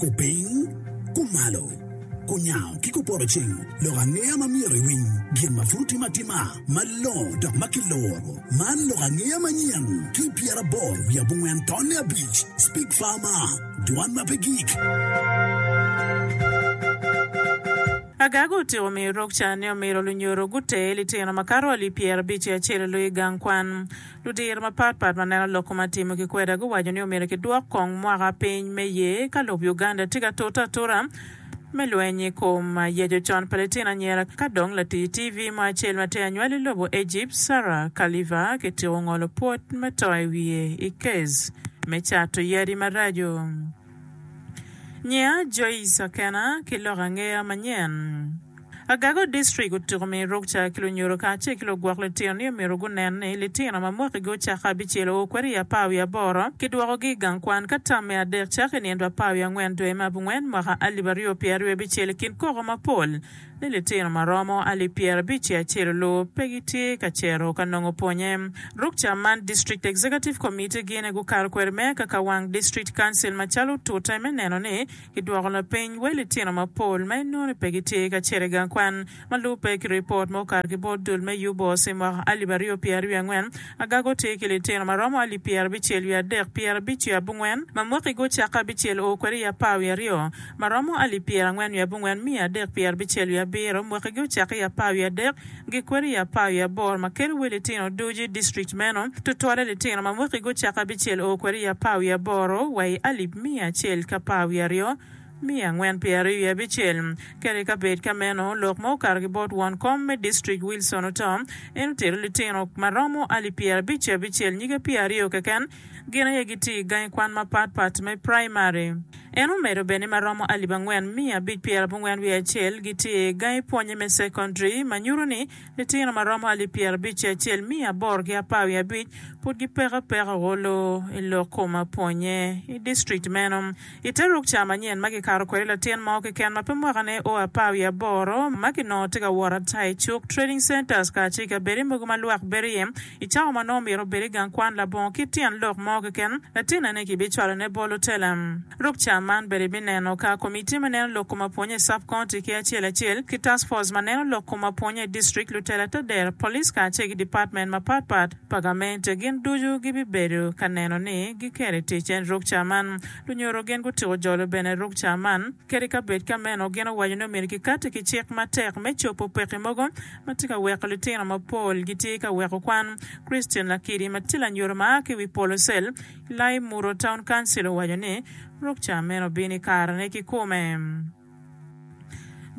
Kupiny, kumalo, kunyango ki kupodoceng lok angeya ma myero iwiny gin ma pud timo atima malongo dok ma kiloro. Man lok angeya manyen ki i pyeraboro wiye abongwen tonne abic, Speak Farmer, Dwan ma Pe Gik. Agag otiko miyo rukca ni omyero lunyodo guter litino makato alip pyerabic ki acel i loyo i gang kwan. Lutira mapat pat ma neno lok ma atimo ki kweda guwaco ni omyero kidwok kong mwaka piny me ye ka lob Uganda tye ka tute atuta me lweny i kom yeco con pa litino anyira ka dong latii TV mo acel ma tye anywal i lobo Egypt, Sarah Kaliva kitiko ngolo pwod me to i wiye i kes me cato yadi maraco. Nyinga Joyce Akena ki lok angeya manyen. Agago District otyeko miyo rukca ki lunyodo kacel ki lugwok litino ni omyero gunen ni litino ma mwakigi ocako abicel oo kwede i apar wiye aboro ki dwokogi i gang kwan ka tam me adek cako i nino apar wiye angwen dwe me abungwen mwaka alip aryo pyeraryo abicel i kin koko mapol ni litino ma romo alip pyerabic i acel olub pe gitye ka cito ka nongo pwonye. Ruk ca man District Executive Committee gine gukato kwede me kaka wang District Council macalo otute me neno ni kidwoko lapiny wel litino mapol ma inongo ni pe gitye ka cito i gang kwan ma lubbe ki ripot ma okato ki bot dul me UBOS i mwaka alip aryo pyeraaryo angwen. Agaga otye ki litino ma romo alip pyerabicel wiye adek pyerabic wiye abongwen ma mwaki-gi ocake abicel oo kwede i apar wiye aryo. ma romo alip pyerangwen wiye abongwen miya adek pyerbicel wiye abiro, mwaki gi ocake i apar wiye adek gi kweri i apar wiye aboro ma kelo wi litino ducu i district meno, tutwale litino ma mwaki gi ocake abicel oo kweri i apar wiye aboro wa i alip miya acel ki apar wiye aryo miya angwen pyeraryo wiye abicel. Kadi ka bed ka meno, lok ma okato ki bot won kom me district Wilson oto, en otero litino ma romo alip pyerabic ki abicel nyige pyeraryo keken gin aye gitye i gangi kwan mapat pat me primary. En omedo bene ni ma romo alip angwen miya abic pyera abongwen wiye acel gitye i gangi pwonye me secondary ma nyuto ni litino ma romo alip pyera abic ki acel miya aboro ki apar wiye abic pud gipeko apeka olo i lok kom apwonye i district meno. I te ruk ca manyen ma kikato kwede latin mo keken ma pe mwakane o apar wiye aboro ma kinongo tye ka wot ata i cuk, trading centers kacel ki abedi mogo ma lwak bedo iye I cawa ma nongo myero obed i gang kwan labongo ki tyen lok mo keken, latinne-ni kibicwalone bolo Telem. Ruk ca man bene ibineno ka Komitti ma Neno Lok Kom Apwonye i Sub-County ki acel acel, ki Task Force ma Neno Lok Kom Apwonye i District, lutela te dero, police kacel ki dipatmen mapat pat pa gamente gin ducu gibibedo ka neno ni giketo i tic en ruk ca man. Lunyodo gin gutyeko jolo bene ruk ca man. Kadi ka bed ka meno, gin owaco ni omyero kikatti ki cik matek me cobo pekki mogo ma tye ka weko litino mapol gitye ka weko kwan. Christian Lakidi ma tye lanyuto ma a ki i wi polo cell i Laimuro Town Council owaco ni, Ruk ca meno obino i karene kikome.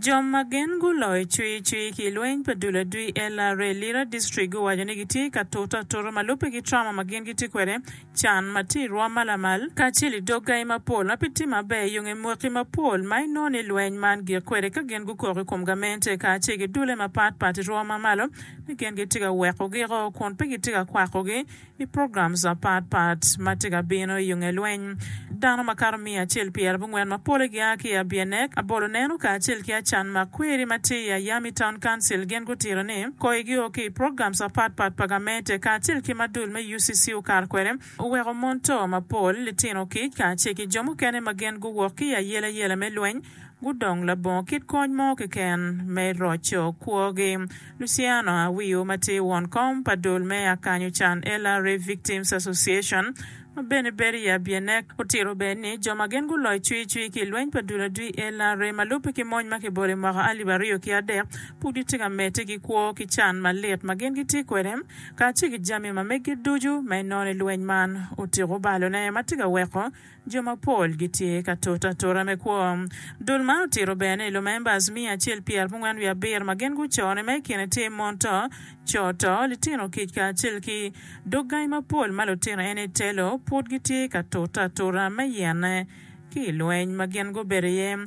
Jo ma gin guloyo cwii cwii ki i lweny pa dul adwi LRA Lira District guwaco ni gitye ka tute atuta ma lubbe ki trauma ma gin gitye kwede can ma tye i rwom ma lamal, kacel i dog gangi mapol ma pe tye maber, i yonge mwaki mapol ma inongo ni lweny man gik kwede ka gin gukok i kom gamente kacel ki dule mapat pat i rwom ma malo ni gin gitye ka weko giko kun pe gitye ka kwakogi i programs mapat pat ma tye ka bino i yonge lweny. Dano makato miya acel pi arabongwen ma pole gia ki i Abianek, Aboloneno kacel ki Acan Makweri ma tye i Ayami Town Council gin gutito ni kogi gio ki i programs mapat pat pa gamente kacel ki ma dul me UCC okato kwede oweko mon to mapol, litino kic kacel ki jo mukene ma gin guwok ki i ayelayela me lweny gudong labongo kit kony mo keken me roco kwogi. Luciano Awiu ma tye won kom pa dul me Akanyo Can ella Rape Victims Association ma bene bedo i Abienek otito bene ni jo ma gin guloyo cwicwi ki i lweny pa dul adwi ella re ma lubbe ki mony ma kibolo i mwaka alip aryo ki adek pud gitye ka medde ki kwo ki can malit ma gin gitye kwede kacel ki jami ma megi ducu ma inono i lweny man otiko balone ma tye ka weko jo mapol gitye ka toto atora me kwo. Dul man otito bene i lumemba Azimio acel pi armungwen wiye abiro ma gin gucone ma i kine tye mon to, co to, litino kic kacel ki dog gangi mapol ma lutino eni telo pud gitye ka toto atora me yene ki i lweny ma gin gubedo iye.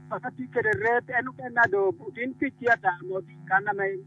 Paka tye kede ret, en oken ado otin kic tye ata ma oting kan na ma en.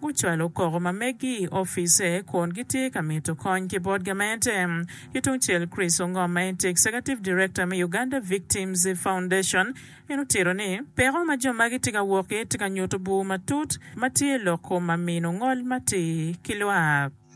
gucwalo koko ma meggi i office kun gitye ka mito kony ki bot gamente. Ki tung cel Chris Ongom ma en tye Executive Director me Uganda Victims Foundation en otito ni, Peko ma jo magi tye ka wok iye tye ka nyuto bur matut ma tye i loko ma mino ngol matir ki lwak.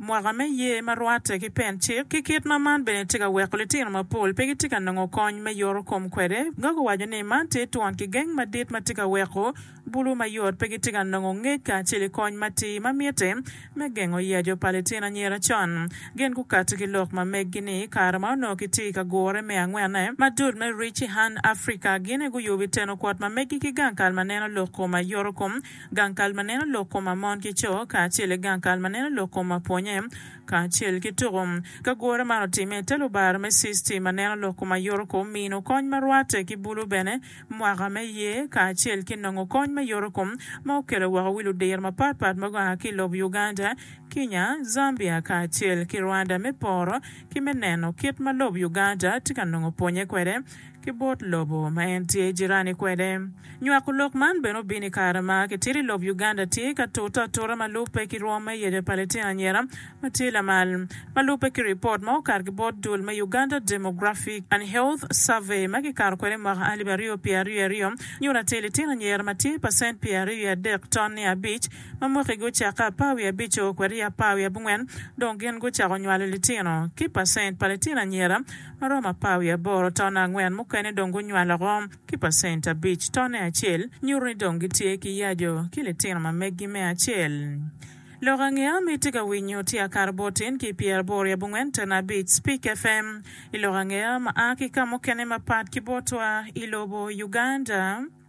mwaka me ye ma rwatte ki pen cik, ki kit ma man bene tye ka weko litino mapol pe gitye ka nongo kony me yoro kom kwede. Gogo owaco ni man tye twon kigeng madit ma tye ka weko bulu mayot pe gitye ka nongo ngec kacel i kony matir ma mitte me gengo yaco pa litino anyira con gin gukati ki lok ma meggi ni i kare ma onongo kitye ka gure me angwene ma dul me Reach Hand Africa gine guyubi teno kwot ma meggi ki gang kal ma neno lok kom a yoro kom gang kal ma neno lok koma mon ki co kacel ki gang kal ma neno lok koma pwonye kacel ki tuku. Ka gure man otimme i te lubaro me CISTI ma neno lok koma yoto kom mino kony ma rwate ki bulu bene mwaka me ye kacel ki nongo kony me yoto kom ma okele woko wi ludiro mapat pat ma gua ki ilob Uganda, Kinya, Zambia kacel ki Rwanda me poro ki me neno kit ma lob Uganda tye ka nongo pwonye kwede. ki bot lobo ma en tye jirani kwede. Nywako lok man bene obino i kare ma kitito i lob Uganda tye ka tute atuta ma lubbe ki rwom me yeco Palitino anyira ma tye lamal, ma lubbe ki ripot ma okato ki bot dul me Uganda Demographic and Health Survey ma kikato kwede i mwaka alip aryo pyer aryo i aryo, nyuto atir litino anyira ma tye pacent pyer aryo i adek ton niya abic ma mwakigi ocakke apar wiye abico kwede i apar wiye abongwen dong gin gucako nywalo litino ki pacent pa litino anyira maromo apar wiye aboro tone angwen mukene dong gunywalo oko ki pacent abic tone acel, nyuto ni dong gitye ki yaco ki litino ma meggi me acel. Lok ange a mitte ka winyo tye akato bot in ki pyer aboro i abongwen tone abic Spik FM i lok ange a ma a ki ka mukene mapat ki botwa i lobo Uganda.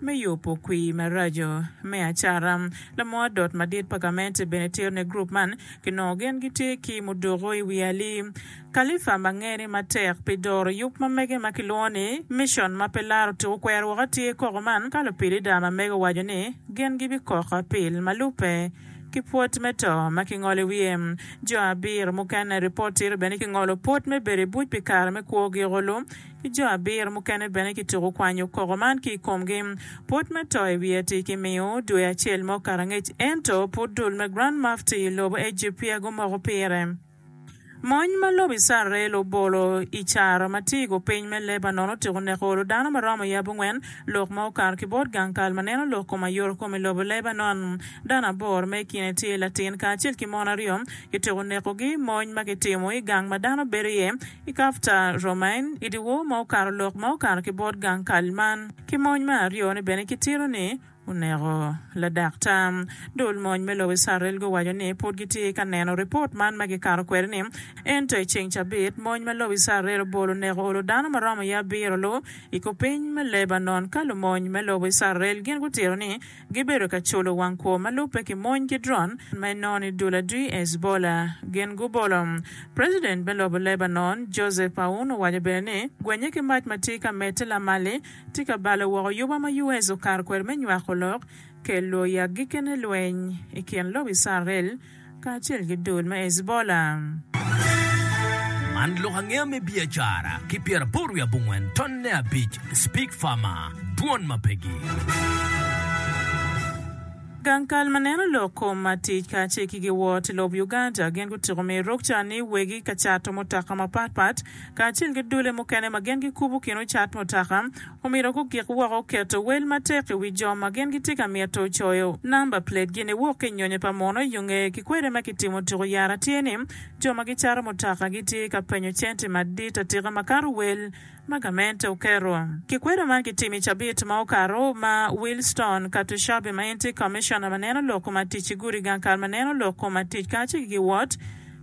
Me yubo kwir maraco me acara, lamor dot madit pa gamente bene tero ne gurup man ki nongo gin gitye ki mudoko i wi ali. Kalifa ma ngene matek pi doro yub ma mege ma kilwongo ni Mission ma pe laro tuku kwero woko atye koko man ka lupilida ma mege owaco ni gin gibikoko apil ma lubbe ki pwod me to ma kingolo i wiye. Jo abiro mukene i ripot tito bene kingolo pwod me bedo i buc pi kare me kwo giko lu ki jo abiro mukene bene kituko kwanyo koko man ki i komgi. Pwod me to i wi Eti kimiyo dwe acel mo karangec, ento pud dul me Grand Mufti i lobo Ejipt peya gumoko pire. Mony ma lobo Icrael obolo i caro ma tye i gupiny me Lebanon otyeko neko olo dano ma romo yab ongwen, lok ma okato ki bot gang kal ma neno lok kom aye oro kom i lobo Lebanon. Dano aboro ma i kine tye latin kacel ki mon aryo kityeko nekogi i mony ma kitimo i gang ma dano bedo iye, I Kafta, Romain, i dyewor ma okato lok ma okato ki bot gang kal man, ki mony me aryo ni bene ki tito ni oneko ladak tam. Dul mony me lobo Icrael guwaco ni pud gi tye ka neno ripot man ma gi kato kwede ni. Ento i ceng cabit, mony ma lobo Icrael obolo oneko olo dano ma romo iye abiro lu i ku piny me Lebanon ka lumony me lobo Icrael gin gutito ni, Gibedo ka culo wang kwo ma lubbe ki mony ki dron ma inoni dul adwi Hezbollah. Gin gubolo. President me lobo Lebanon, Joseph Aoun owaco bene ni gwenye ki mac ma tye ka medde lamalli tye ka balo woko yuba ma US okato kwede me nywako lok kello i agikine lweny i kin lobo Icrael kacel ki dul me Hezbollah. Man lok angeya me biacara ki pyeraboro wiye abongwen tonne abic Speak Farmer, Dwon ma pegi. Gang kal ma neno lok kom matic kacel ki giwot i lob Uganda gin gutiko miyo rukca ni wegi ka cato mutoka mapatpat kacel ki dulle mukene ma gin gikubo kin ocat mutaka, omyero gugik woko keto wel matek i wi jo ma gin gitye ka mito coyo namba platgi niwok ki i nyonyo pa muno. Yo ngeye ki kwede ma kitimo tuku yara tye ni jo ma gicato mutaka gitye ka penyo cente madit atika makato wel ma gamente oketo. Kikwedo man kitimo i cabit ma okato ma Wilstone Katushabe ma en tye Commissioner ma neno lok ma tic ki gudi gang kal ma neno lok ma tic kacel ki giwot,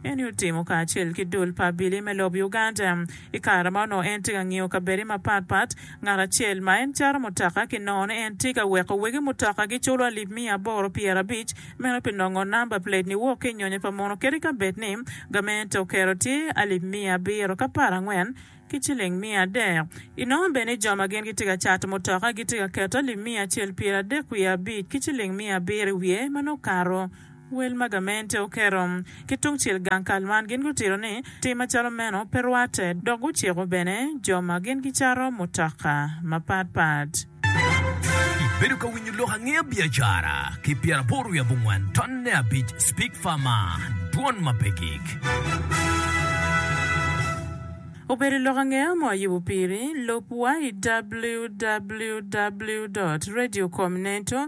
Eni otimo kacel ki dul pa abili me lobo Uganda. I kare ma onongo en tye ka ngiyo kabedde mapat pat, ngat acel ma en cato mutoka ki nongo ni en tye ka weko wegi mutoka giculo alip miya aboro pyera abic, meno pi nongo namba plate ni wok ki i nyonyo pa mono kadi ka bed ni gamente oketo tye alip miya abiro ki apar angwen ki ciling miya adek. I nongo bene jo ma gin gitye ka cato mutoka gitye ka keto alip miya acel pyera adek wiye abic ki ciling miya abiro i wiye ma nongo kato. Wel ma gamente oketo ki tungcel gang kal man gin gutito ni tim macalo meno pe rwatte dok guciko bene jo ma gin gicato mutoka mapat pat. Ibedo ka winyo lok angeya biacara ki pyeraboro wiye abongwen ton ne abic speak far maa dwon ma pe gig. Obedo i lok angeya mo ayubo piri, lub wa i www dot radio com neto.